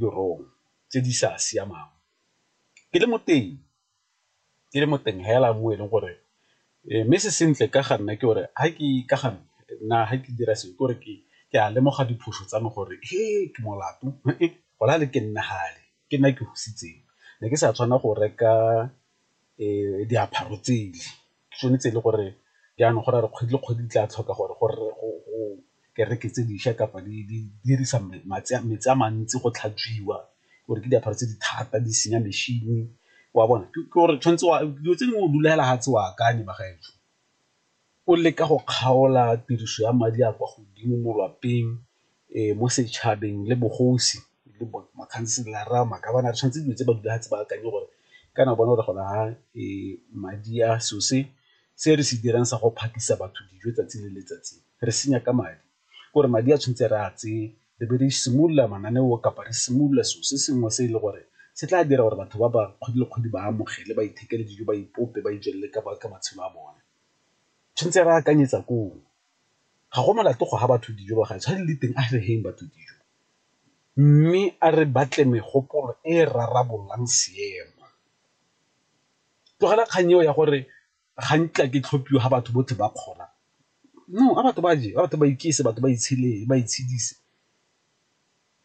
ditirong tse di sa siamang. Ke le moteng fela mo e leng gore mme se sentle ka ga nna ke gore ga ke ka ga nna ga ke dira selo ke gore ke a lemoga diphoso tsa me gore ke molato go na le ke nna fale ke nna ke ne ke sa tshwanela go reka diaparo tsele. tshwanetse e le gore jaanong go ra re kgwedi le kgwedi di tla tlhoka gore go kereke tse dišwa kapa di dirisa metsi a mantsi go tlhatswiwa gore ke diaparo tse di thata di senya mešhini wa bona ke gore tshwanetse wa dilo tse dingwe o dula fela ga tse o akanye bagaetsho, o leka go kgaola tiriso ya madi a kwa godimo mo lwapeng mo setšhabeng le bogosi le makhanselara, magabane re tshwanetse dilo tse ba dula fatshe ba akanye gore kana o bona gore gona ha madi a selo se se re se dirang sa go phakisa batho dijo 'tsatsi le letsatsi re senya ka madi ke gore madi a tshwanetse re a tseye re be re simolola mananeo kapa re simolola selo se sengwe se e le gore se tla dira gore batho ba ba kgwedi le kgwedi ba amogele ba ithekele dijo, ba ipope, ba ijelele ka matshelo a bone, tshwanetse re akanyetsa koo. ga go molato go fa batho dijo ba gaetsho ga di le teng a re feng batho dijo mme a re batle megopolo e e rarabololang seemo. Tlogela kgang eo ya gore ga nkitla ke tlhophiwa ga batho botlhe ba kgona, no a batho ba je, a batho ba iketse, batho ba itshele, ba itshedisa.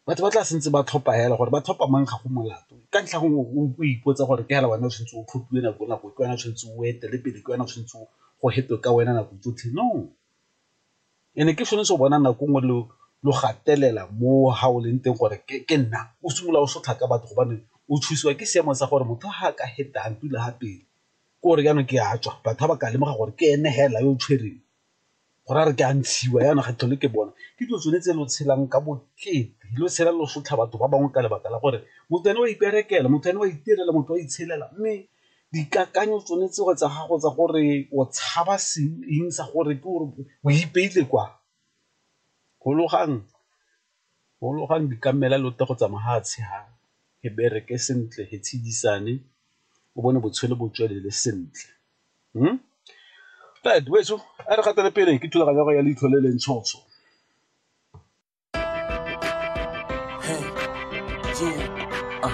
batho ba tla santse ba tlhopha hela gore ba tlhopha mang ga go molato ka ntlha gongwe o ipotsa gore ke hela wena o tshwanetse o tlhophiwe nako le nako ke wena o tshwanetse o etele pele ke wena o tshwanetse go hetwe ka wena nako tsotlhe no. And-e ke sone se o bonang nako nngwe lo gatelela mo ga o leng teng gore ke nna, o simolola o sotlha ka batho gobane o thusiwa ke seemo sa gore motho ga a ka heta a ntula ga pele ke gore jaanong ke a tswa batho ga ba ka lemoga gore ke ene hela yo o tshwereng go raya gore ke a ntshiwa jaanong ga ke tlhole ke bona ke dilo tsone tse lo tshelang ka bokete lo tshela lo sotlha batho ba bangwe ka lebaka la gore motho ene wa iperekela motho ene wa itirela motho wa itshelela mme dikakanyo tsone tseo tsa gago tsa gore o tshaba seng eng sa gore ke gore o ipeile kwa, gologang di ka mmela lote go tsamaya ga a tshegare, e bereke sentle, e tshedisane o bone botshelo bo tswelele sentle . Weso a re gatele pele ke thulaganyo ya go ya leitlho le le ntshotsho.